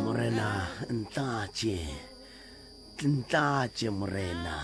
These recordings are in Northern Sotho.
morena ntlatše ntlatše morena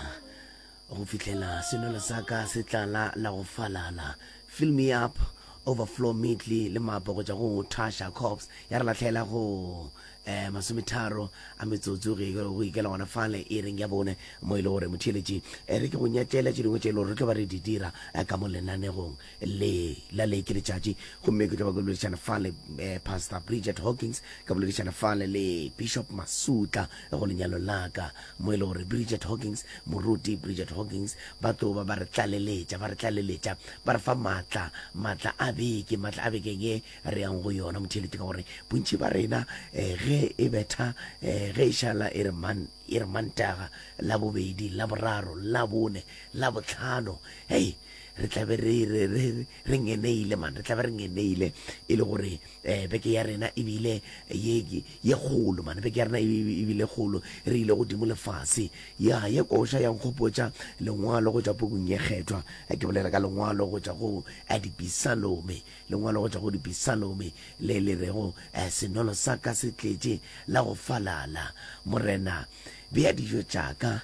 go fihlela senolo sa ka se tlala la go falala fill me up overflow meatly le mapo go tšwa go tasha cops ya re latlhela go um masometharo a metsotso go ikela gona fale e reng ya bone mo e le gore motheeletši eh, re ke go nyatlele tše dingwe tše e le gore re tlo ba re di dira eh, ka mo lenanegong Le, la le ke letšatši, gomme ke tla ba ke boledišana fa le eh, Pastor Bridget Hawkins, ka boledišana fa le le Bishop Masutla go lenyalo la ka, mo e le gore Bridget Hawkins, moruti Bridget Hawkins, ba tlo ba ba re tlaleletša, ba re tlaleletša, ba re fa matla, matla a beke, matla a bekeng e re yang go yona. Motheeletši ka gore bontši ba rena eh, ge e betha, eh, ge e šala e re man, e re mantaga, la bobedi, la boraro, la bone, la botlhano, hei, re tla be re re re re ngeneile man re tla be re ngeneile e le gore eh beke ya rena e bile ye ye kgolo man beke ya rena e bile kgolo re ile godimo le fase ya ye koša ya nkgopotša lengwalo go tšwa pukung ye kgethwa ke bolela ka lengwalo go tšwa go dipisalome lengwalo go tšwa go dipisalome le le rego senolo sa ka se tletše la go falala morena bea dijo tša ka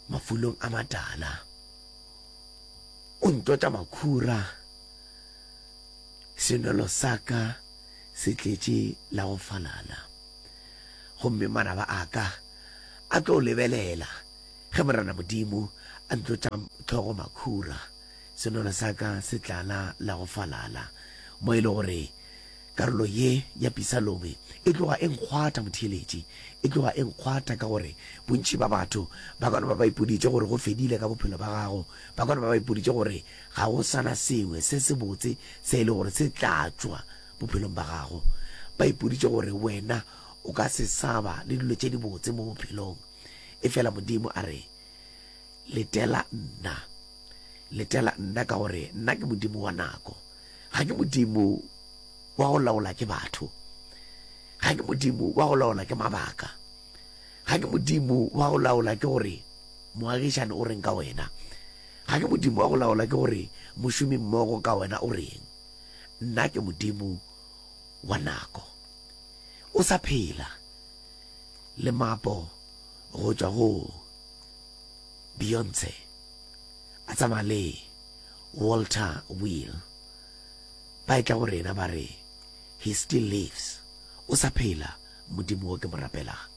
mafulong a matala o ntota makhura senwelo sa ka se tletše la go falala gomme manaba a ka a tlo lebelela ge morena modimo a ntotša tlhogo makhura senwelo sa ka se tlala la go falala mo e le gore Karolo ye ya pisalome e tloga e nkgwatha, motheeletši. E tloga e nkgwatha ka gore bontši bja batho ba ka no ba ba ipoditše gore go fedile ka bophelo bja gago. Ba ka no ba ba ipoditše gore ga go sa na sengwe se sebotse se e lego gore se tla tšwa bophelong bja gago. Ba ipoditše gore wena o ka se sa ba le dilo tše dibotse mo bophelong. Efela Modimo a re, Letela nna. Letela nna ka gore nna ke Modimo wa nako. Ga ke Modimo wa go laola ke batho. Ga ke Modimo wa go laola ke mabaka. Ga ke Modimo wa go laola ke gore moagišani o reng ka wena. Ga ke Modimo wa go laola ke gore mošomi mmogo ka wena o reng. Nna ke Modimo wa nako. O sa phela le mapo go tšwa go Beyonce a tsamaya le Walter Wheel ba etla go rena ba re, He still lives, o sa phela Modimo wo ke mo rapelaga.